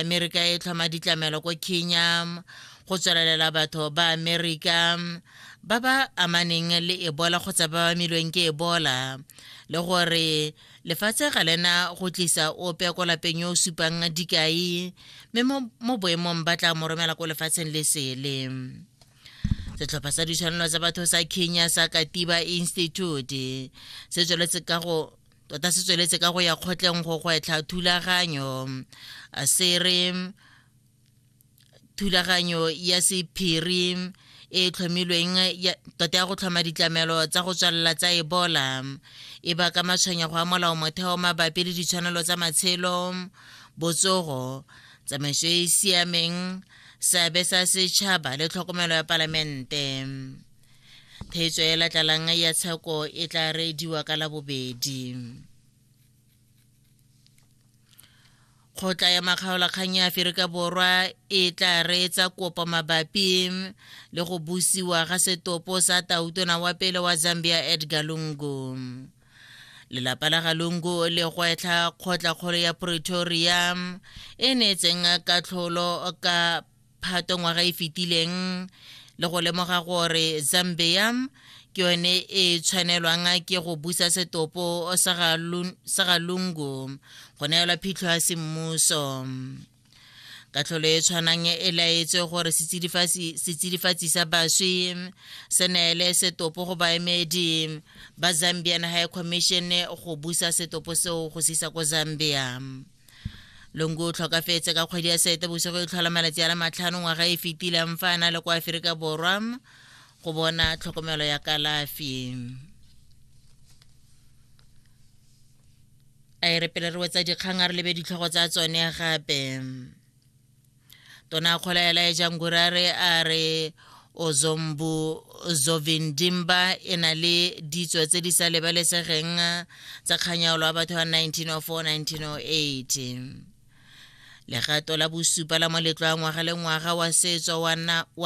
amerika e tlhoma ditlamelo ko kenya go tswelelela batho ba amerika ba ba amaneng le ebola kgotsa ba ba milweng ke ebola le gore lefatshe ga lena go tlisa ope ko lapeng yo o supang dikai mme mo boemong ba tla mo romela ko lefatsheng le sele setlhopha sa ditshwanelo tsa batho sa kenya sa katiba institute se tsweletse ka go tota se tsweletse ka go ya kgotleng go gwetlha thulaganyo se re thulaganyo ya sephiri e tlhomilweng tota ya go tlhoma ditlamelo tsa go tswalela tsa ebola e baka matshwenyego a molao motheo mabapi le ditshwanelo tsa matshelo botsogo tsamaiso e e siameng seabe sa setšhaba le tlhokomelo ya palamente theetso e latlalang ya tsheko e tla reediwa ka labobedi kgotla ya makgaolakgang ya aferika borwa e tla reetsa kopo mabapi le go busiwa ga setopo sa tautona wa pele wa zambia edgar lungu lelapa la ga lungu le gwetlha kgotla kgolo ya pretoria e neetseng katlholo ka phato ngwaga e fetileng le go lemoga gore zambia ke yone e tshwanelwang ke go busa setopo sa ga lungu go neelwa phitlho ya semmuso katlholo e tshwanang e laetse gore setsidifatsi sa baswi se neele setopo go baemedi ba zambian high commission go busa setopo seo go sisa ko zambia longu o tlhokafetse ka kgwedi ya sete bosigo e tlhola malatsi a le matlhano ngwaga e fetileng fa a na le kwa aferika borwa go bona tlhokomelo ya kalafi a e re pele re wetsa dikgang a re lebe ditlhogo tsa tsone gape tona kgola ya laeja ngurare a re ozombu zovindimba e na le ditso tse di sa lebalesegeng tsa kganyaolo wa batho wa 1904-1908 legato la bosupa la moletlo wa ngwaga le ngwaga wa setso wa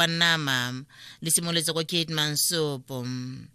nama le simolotse ko kate mansopo